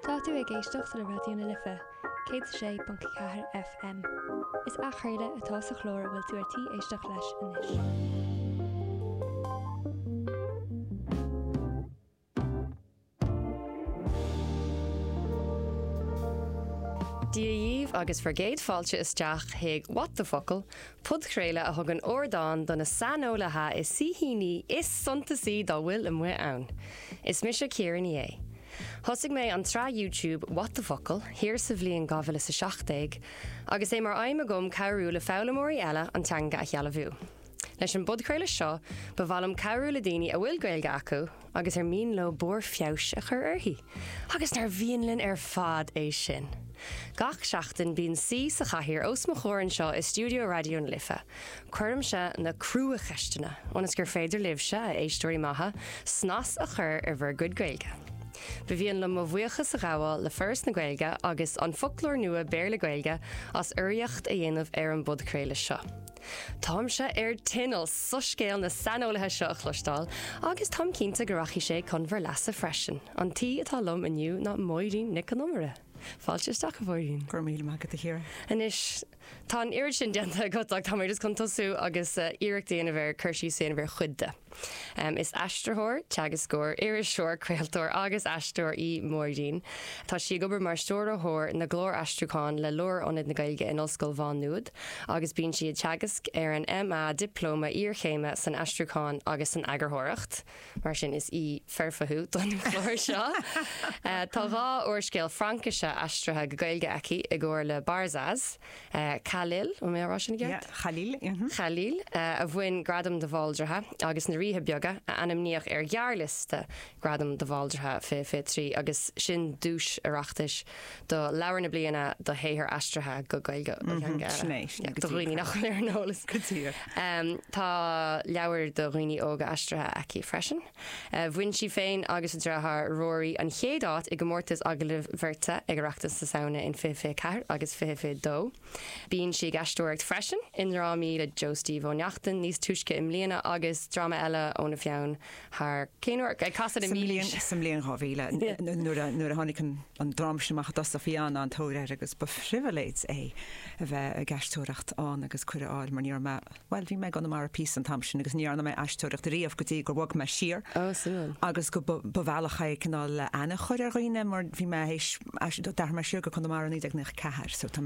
Tá tú ag éisteacht le Raidió na Life 106.4 FM. Is athchraoladh atá sa chlár a bhfuil tú ar tí éisteacht leis anois. Dia dhaoibh agus bhur gcéad fáilte isteach chuig What the Focal! Podchraoladh a thugann ardán do na saineolaithe is saoithíní is suntasaí dá bhfuil amuigh ann. Is mise Ciara Ní É. Thosaigh mé an tsraith YouTube What the Focal? thiar sa bhliain 2017, agus é mar aidhm agam cabhrú le foghlaimeoirí eile an teanga a shealbhú. Leis an bpodchraoladh seo, ba mhaith liom cabhrú le daoine a bhfuil Gaeilge acu, agus ar mian leo barr feabhais a chur uirthi, agus nár mhian linn ar fad é sin! Gach seachtain bíonn saoi sa chathaoir os mo chomhair anseo i stiúideo Raidió na Life. Cuirimse na cruacheisteanna, ionas gur féidir libhse, a éisteoirí maithe, snas a chur ar bhur gcuid Gaeilge. Ba mhian liom mo bhuíochas a ghabháil le Foras na Gaeilge agus An Foclóir Nua Béarla-Gaeilge as urraíocht a dhéanamh ar an bpodchraoladh seo. Táimse ar tinneall soiscéal na saineolaithe seo a chloisteáil, agus táim cinnte go rachaidh sé chun bhur leasa freisin. An t-aoi atá liom inniu ná Máirín Nic Con Iomaire. Fáilte isteach, a Mháirín. Go raibh míle maith agat, a Chiara. Anois, tá an oiread sin déanta agat, ach táimid just chun tosú agus iarracht a dhéanamh ar cur síos a dhéanamh ar chuid de. Is aistritheoir, teagascóir, iriseoir, craoltóir agus aisteoir í Máirín. Tá sí ag obair mar Stiúrthóir na gClár Aistriúcháin le Lárionad na Gaeilge in Ollscoil Mhá Nuad agus bíonn sí ag teagasc ar an MA, Dioplóma Iarchéime san Aistriúchán agus san Eagarthóireacht, mar sin is aoi foirfe thú don chlár seo! Tá dhá úrscéal Fraincise aistrithe go Gaeilge aici i gcomhar le Barzaz. Khalil, an bhfuil mé ag rá sin i gceart? Yeah, Khalil, mhm. Khalil, a bhain Gradam de Bhaldraithe agus na Ríthe Beaga, a ainmníodh ar ghearrliosta Gradam de Bhaldraithe 2023 agus sin duais Oireachtais do Leabhar na Bliana do shaothar aistrithe go Gaeilge ó theanga eile. Sin é, sin é, go díreach. Do dhaoine nach bhfuil ar an eolas. Go díreach. Em, tá leabhair do dhaoine óga aistrithe aici freisin. Bhain sí féin agus a dreatháir Ruairí an chéad áit i gcomórtas agallaimh bheirte ag Oireachtas na Samhna in fiche, fiche ceathair agus fiche, fiche dó. Bíonn sí ag aisteoireacht freisin i ndrámaí le Joe Steve Ó Neachtain níos túisce i mbliana agus dráma eile óna pheann thiar, cén uair? Ag casadh na mílaoise! Sa mbliain 2000 nuair a tháinig an dráma sin amach i dtosach bhí an- an-tóir air agus ba phribhléid é a bheith ag aisteoireacht ann agus cuireadh a fháil mar ní raibh mé Bhuel, bhí mé i gConamara píosa an t-am sin agus ní dhearna mé aisteoireacht riamh go dtí gur bhog mé siar. Oh, suimiúil. Agus go, ba bhealach é cineál aithne a chur ar dhaoine mar bhí mé th'éis, d'athraigh mé siar go Conamara i 1994 so tá mé